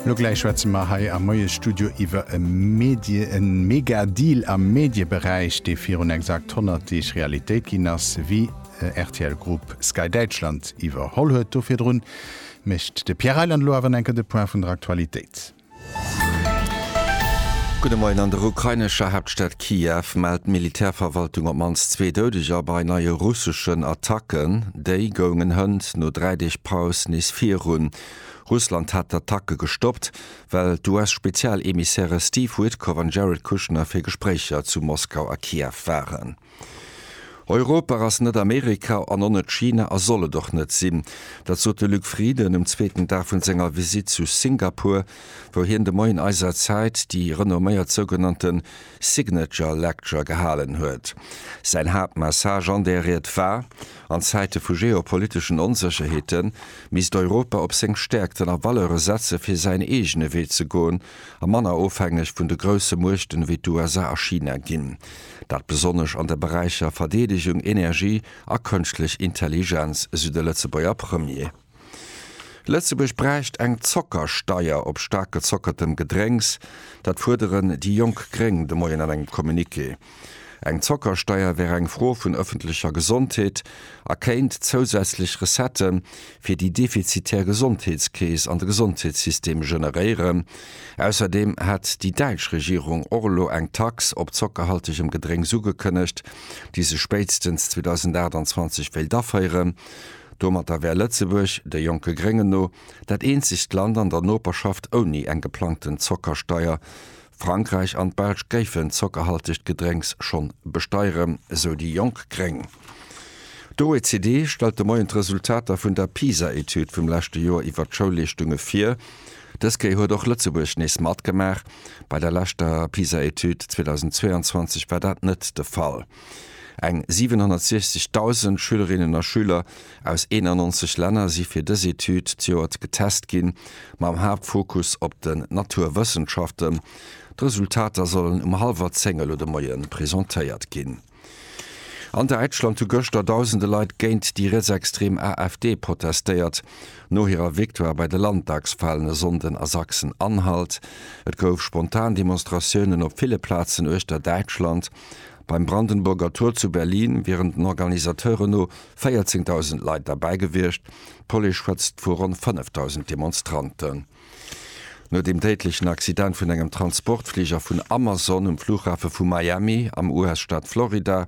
Lo gläich schwätze mer hei am Moiesstudio iwwer e Medie-, e Mega-Deal am Medieberäich, dee virun exakt 100 Deeg Realitéit ginn ass, wéi rtl Group Sky Däitschland iwwerholl huet. Do virdrun mécht de Pierre Reyland elo awer enker de Point vun der Aktualitéit. Gudde Moien, An der ukrainescher Haaptstad Kiew mellt d'Militärverwaltung op d'mannst zwee Doudeger bei neie russeschen Attacken. Déi goungen hënt no dräi Deeg Paus nees virun. Russland hat d'Attacke gestoppt, well d'US-Spezialemissäre Steve Witkoff an Jared Kushner fir Gespréicher zu Moskau a Kiew waren. Europa ass net Amerika an och net China a soll et och net sinn. Dat sot de Luc Frieden um zweeten Dag vun senger Visitt zu Singapur, wou hien de Moien eiser Zäit déi renomméiert sougenannte Signature Lecture gehalen huet. Säin Haaptmessage an där Ried war, An Zäite vu geopoliteschen Onsécherheete misst Europa op seng Stäerkten a Valeure setze fir säin eegene Wee ze goen a manner ofhängeg vun de grousse Muechten ewéi d'USA a China ginn. Dat besonnesch an de Beräicher Verdeedegung, Energie a Kënschtlech Intelligenz, esou de Lëtzebuerger Premier. Lëtzebuerg bräicht eng Zockersteier op staark gezockertem Gedrénks, dat fuerderen déi jonk Gréng de Moien an engem Communiqué. Eng Zockersteier wär eng Fro vun ëffentlecher Gesondheet a kéint zousätzlech Recettë fir déi defizitär Gesondheetskeess an de Gesondheetssystem generéieren. Ausserdeem hat déi däitsch Regierung och elo eng Tax op zockerhaltegem Gedrénks ugekënnegt, déi se spéitstens 2028 wéilt aféieren. Domatter wär Lëtzebuerg, de jonke Gréngen no, dat eenzegt Land an der Noperschaft ouni eng geplangten Zockersteier. Frankräich an d'Belsch géifen d'zockerhaltegt Gedrénks schonn besteieren, esou déi jonk gréng. D'OECD stellt de Moien d'Resultater vun der PISA-Etüd vum leschte Joer iwwer d'Schoulleeschtunge vir. Dës Kéier huet och Lëtzebuerg nees matgemaach. Bei der leschter PISA-Etüd 2022 war dat net de Fall. Eng 760.000 Schülerinnen a Schüler aus 91 Länner si fir dës Etüd d'Joert getest ginn, mam Haaptfokus op den Naturwëssenschaften. D'Resultater sollen um hallwer 10 elo de Moie presentéiert ginn. An Däitschland hu gëschter dausende Leit géint déi rietsextrem AfD protestéiert, no hirer Victoire bei de Landtagswalen e Sonnden a Sachsen-Anhalt. Et gouf spontan Demonstratiounen op ville Plazen uechter Däitschland. Beim Brandenburger Tor zu Berlin wieren den Organisateuren no 14.000 Leit derbäi gewiescht, d'Police schwätzt vu ronn 5.000 Demonstranten. No dem déidlechen Accident vun engem Transportfliger vun Amazon um Flughafe vu Miami am US-Staat Florida,